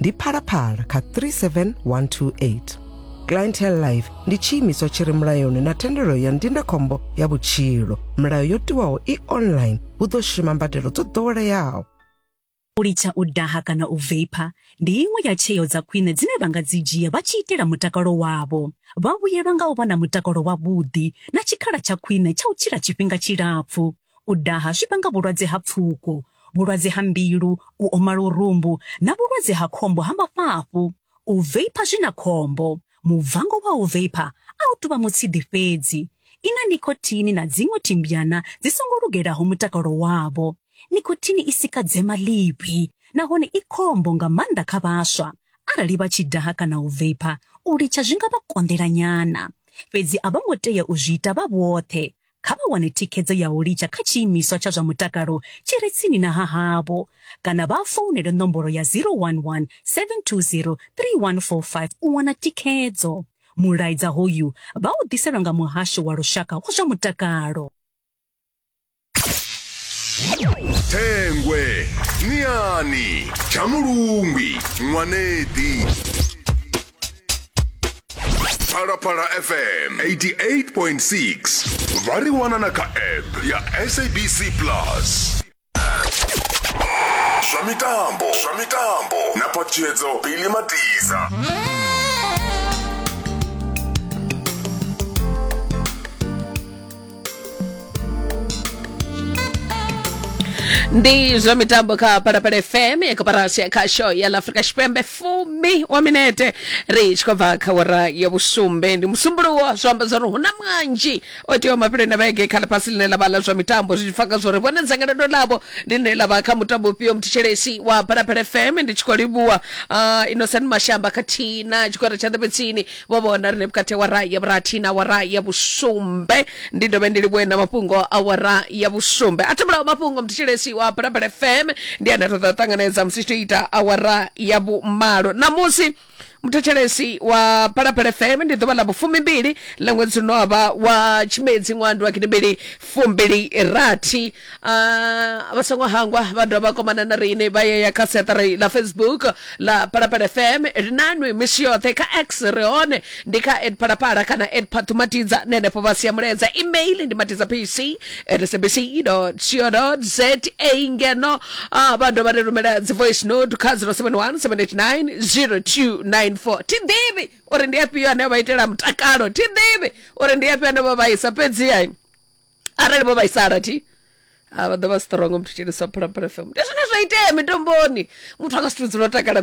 ndi phalaphala kha 37128 clientele life ndi tshiimiswa tshi re mulayoni na thendelo ya ndindakhombo ya vhutshilo milayo yo tiwaho i online hu ḓo shuma mbadelo dzo ḓoweleaho u litsha u daha kana u veipa ndi iṅwe ya tsheo dza khwine dzine vha nga dzi dzhia vha tshi itela mutakalo wavho vha vhuyelwa nga u vha na mutakalo wavhuḓi na tshikhala tsha khwine tsha u tshila tshifhinga tshilapfu U daha zwi vhanga vhulwadze ha pfuko, vhulwadze ha mbilu, u oma lurumbu na vhulwadze ha khombo ha mafhafhu. U veipha zwi na khombo. Mubvango wa u veipha a u tou vha mutshidi fhedzi. I na nikhothini na dziṅwe thimbyana dzi songo lugelaho mutakalo wavho. Nikhothini i sika dzema ḽivhi nahone i khombo nga maanḓa kha vhaswa. Arali vha tshi daha kana u veipha, u litsha zwi nga vha konḓela nyana. Fhedzi a vho ngo tea u zwi ita vha vhoṱhe. Kha vha wane thikhedzo ya u litsha kha tshiimiswa tsha zwa mutakalo tshi re tsini na ha havho kana vha founele nomboro ya 011 720 3145 u wana thikhedzo. Mulaedza hoyu vha u ḓiselwa nga Muhasho wa Lushaka wa zwa Mutakalo. Thengwe, Niani, Tshamulungwi, Nwaneḓi. phalaphala fm 88.6 vha ri wana na kha app ya sabc plus zwa mitambo zwa mitambo na patshedzo bili matiza ndi zwa mitambo kha palapala fm ya koparasi ya khasho ya la afrika tshipembe fumi wa minete ri tshi khou bva kha wara ya vhusumbe ndi musumbuluwo zwo amba zwa uri hu na mwanzhi o teaho mafheloni a vhege kha ḽifhasi ḽine ḽa vha ḽa zwa mitambo zwi tshi pfa kha zwa uri vhone dzangalelo ḽavho ndi ḽine ḽa vha kha mutambo ufhio muthetshelesi wa palapala fm ndi tshi khou livhuwa uh, innocent mashamba khathihi na tshigwada tsha ḓebetsini vho vhona rine vhukati awara ya vhurathi na awara ya vhusumbe ndi dovhe ndi livhuwe na mafhungo awara ya vhusumbe a thomulaho mafhungo mthetshelesi wa balabala fm ndi ane a ṱoḓa u ṱanganedza musi tshi ita awara ya vhumalo ṋamusi muthetshelesi wa balabala fm ndi ḓuvha ḽa vhufumimbili ḽa ṅwedzi uno wavha wa tshimedzi ṅwando wa gidimbili fumbili rathi Ah, vha songo hangwa vha dovha vha komana na riṋe vha yeya kha seṱari ḽa facebook ḽa phalaphala fm ri nanwi misi yoṱhe kha x ri hone ndi kha ed phalaphala kana ed phathumatidza na henefho vha sia mulaedza email ndi matidza pc at sabc co za ngeno ah, vha dovha ri rumela dzi voice note kha 071 789 0294 thi ḓivhi uri ndi afhio ane vha itela mutakalo thi ḓivhi uri ndi afhio ane vha vhaisa fhedzi hai arali vho vhaisala thi ha vha ḓo vha strong muthu tshilisa phalaphala fm ndi zwine zwa itea mitomboni muthu anga si to dzula o takala